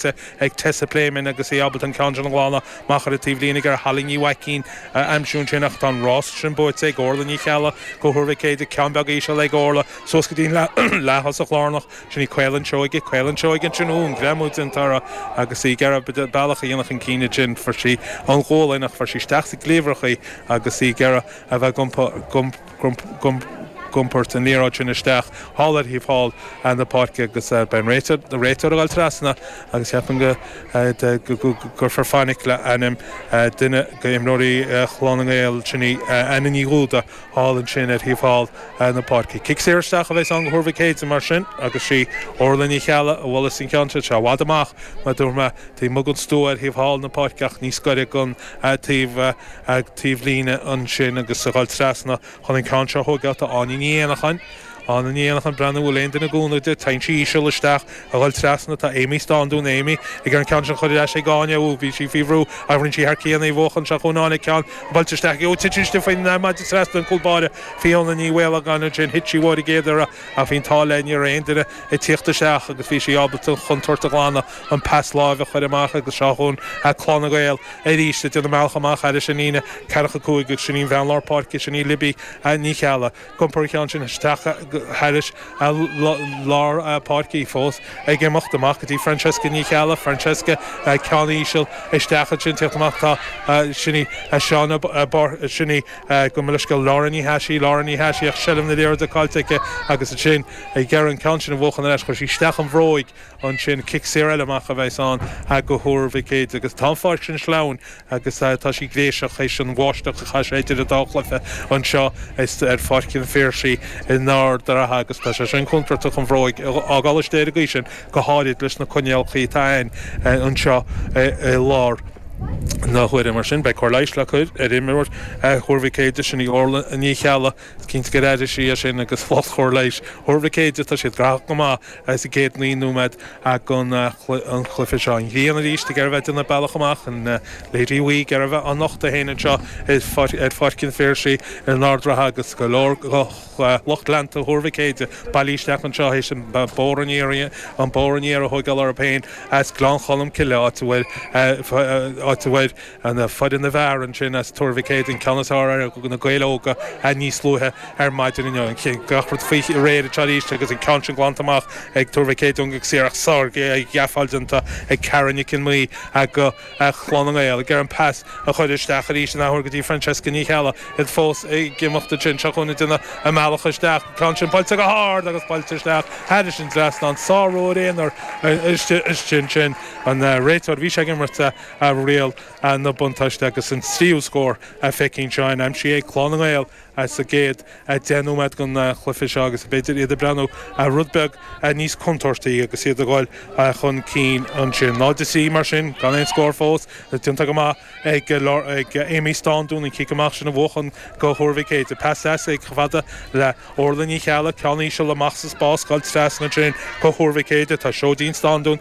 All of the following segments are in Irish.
ag Tessa Pléimeann agus í ábalta an ceann sin a ghlanadh amach ar an taobhlíne ag iarraidh Holly Ní Mhaicín a aimsiú ansin ach tá an rás sin buaite ag Órla Ní Cheallaigh do Thuar Mhic Éadaigh, ceann beag íseal ag Órla suas go dtí an leath-thosach lárnach, sin í Caolan Seoige, Caolan Seoige ansin, ú, an greamú déanta uirthi agus í ag iarraidh a bealach a dhéanamh chun cinn ansin, fuair sí an ghualainn ach fuair sí isteach sa gcliabhrach í agus í ag iarraidh a bheith ag iompar, ag iompar an liathróid sin isteach thall ar thaobh thall na páirce agus beidh an réiteoir ag dul trasna agus cheapfainn go gcuirfear fainic le ainm duine de imreoirí Chlann na nGael sin í Anna Ní Dhúda thall ansin ar thaobh thall na páirce. Cic saor isteach a bheas ann do Thuar Mhic Éadaigh mar sin agus sí Orla Ní Cheallaigh a bhuaileas an ceann sin. Tá sé i bhfad amach mar dúirt mé taobh amuigh den stua ar thaobh thall na páirce ach níos gaire don taobh, taobhlíne ansin agus ag dul trasna chun an ceann seo a thógáil. Tá Áine Ní Éanacháin, Anna Ní Éanacháin ag breathnú, an bhfuil aon duine i gcúnamh di? Téann sí íseal isteach ag dul trasna tá Amy Staunton, Amy, ag an ceann sin chun iarraidh ar ais ag Áine. Ooh, bhí sí faoi bhrú ach rinne sí thar cionn í a bhuachan seo chugainn Áine an ceann buailte isteach aici. Ooh, titeann sí faoin maide trasna an cúl báire. Fiona Ní Mhaolagáin ansin, thit sí uaithi an chéad uair ach bhí an t-ádh léi, ní raibh aon duine ag tíocht isteach agus bhí sí ábalta an chontúirt a ghlanadh. an pas láimhe a chur amach agus seo chugainn Clann na nGael arís ag déanamh a mbealach amach thairis an líne 45 agus sin í bean lár páirce sin í Libby Ní Cheallaigh ag iompar an ceann sin isteach thairis lár páirce í fós ag imeacht amach go dtí Francesca Ní Cheallaigh Francesca an ceann íseal isteach ansin ag teacht amach tá sin í Seán Ó sin í gabh mo leithscéal Laura Ní Chathasaigh Laura Ní Chathasaigh ach seilbh na liathróide caillte aici agus ansin ag iarraidh an ceann sin a bhuachan ar ais chuir sí isteach an bhróig ansin cic saor eile amach a bheas ann do Thuar Mhic Éadaigh agus tá an pháirc sin sleamhain agus tá sí gréiseach théis an bháisteach a chaith sé idir na dá chluiche anseo ar Pháirc an Phiarsaigh in Ard an Rátha agus tá sé sin contúirteach an bhróig a fhágáil istigh ar an gcaoi sin go háirid leis na coinníollacha atá ann anseo i láthair na huaire mar sin beidh cóir leighis le cur ar imreoir Thuar Mhic Éadaigh, sin í Orla Ní Cheallaigh, is cinnte gur airigh sí é sin agus lucht chóir leighis Thuar Mhic Éadaigh tá siad graitheach go maith sa gcéad naoi nóiméad den chluiche seo. An ghrian arís ag iarraidh a bheith ag déanamh a bealach amach. An Léaraí ag iarraidh bheith á nochtadh féin anseo ar Pháirc an Phiarsaigh in Ard an Rátha agus go leor de lucht leanta Thuar Mhic Éadaigh bailithe isteach anseo théis an bóthar aniar a thóigeáil orthu féin as Gleann Cholm Cille áit a bhfuil Ana chuid ana mhear ansin as Tuar Mhic Éadaigh, ceann is fearr ar Na Gaeil Óga a níos luaithe ar maidin inniu. Gach rud faoi réir anseo arís agus an ceann sin glanta amach ag Tuar Mhic Éadaigh go saor ach sárghabháil déanta ag Karen Nic an Mhí ag Clann na nGael ag iarraidh an pas a chuir isteach arís an athuair go dtí Francesca Ní Cheallaigh. Iad fós ag imeacht ansin. Seo chugainn ag déanamh a mbealach isteach. An ceann sin buailte go hard agus buailte isteach thairis an trasnán. Sárú ar aon chor istigh ansin. An réiteoir bhí sé ag imirt a. a riail na buntáiste agus an tríú scór a phéicín seo in aimsithe ag Clann na nGael sa gcéad deich nóiméad den chluiche seo agus b'fhéidir iad ag breathnú rud beag níos contúirtí agus iad a dhul chun cinn ansin. 0-3 mar sin gan aon scór fós déanta go maith ag Amy Stándún an cic amach sin a bhuachan do Thuar Mhic Éadaigh. Pas deas chomh fada le Orlaith Ní Cheallaigh, ceann íseal amach sa spás, scaoilte trasna ansin do Thuar Mhic Éadaigh. Tá Seoidín Stándún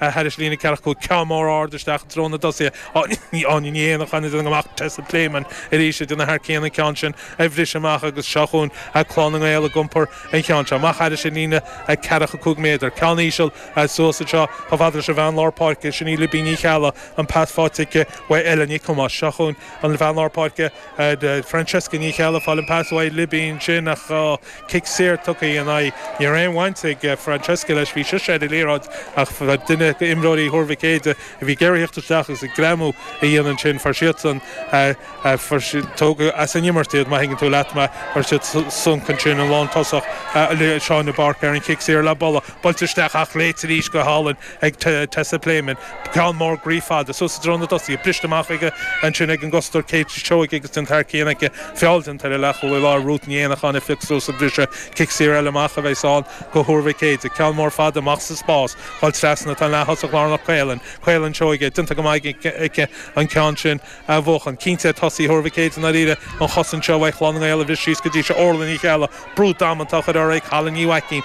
a thairis líne ceathracha cúig ceann mór ard isteach i dtreo na dtosaithe. Áine Áine Ní Éanacháin a d'fhan amach Tessa Pléimeann arís ag déanamh thar cionn an ceann sin a bhriseadh amach agus seo chugainn a Clann na nGael ag iompar an cheann seo amach thairis i líne a ceathracha cúig méadar. Ceann íseal a suas anseo chomh fada leis an bhean lár páirce, sin í Libín Ní Cheallaigh, an pas faighte aici uaidh Ella Nic Thomáis. Seo chugainn an bhean lár páirce. de Francesca Ní Cheallaigh fáil an pas uaidh Luibín sin ach tá cic saor tugtha in aghaidh Ní raibh aon bhaint ag Francesca leis bhí sise ar an liathróid ach duine d'imreoirí Thuar Mhic Éadaigh a bhí ag iarraidh a thíocht isteach agus greamú a dhéanamh ansin fuair siadsan fuair siad tógadh as an imirt iad má thuigeann tú leat mar fuair siad sonc ansin an lántosach Shauna Burke ar an gcic saor low ball buailte isteach ach léite arís go hálainn ag Tessa Pléimeann, ceann mór groí fada, suas i dtreo na dtosaithe, briste amach aige ansin ag an gcosantóir, Kate Seoige agus déanta thar cionn aici, feall déanta ar an leathchúlaí i lár, Ruth Ní Éanacháin ag piocadh suas an bhriseadh, cic saor eile amach a bheas ann do Thuar Mhic Éadaigh, ceann mór fada amach sa spás, dhul trasna, tá an leath-thosach lárnach Caolan, Caolán Seoige, déanta go maith aici an ceann sin a bhuachan, cinnte ar thosaithe Thuar Mhic Éadaigh i ndáiríre an chosaint seo uaidh Chlann na nGael a bhriseadh síos go dtí seo, Órla Ní Cheallaigh, brú damanta á chur uirthi ag Halla Ní Mhaicín,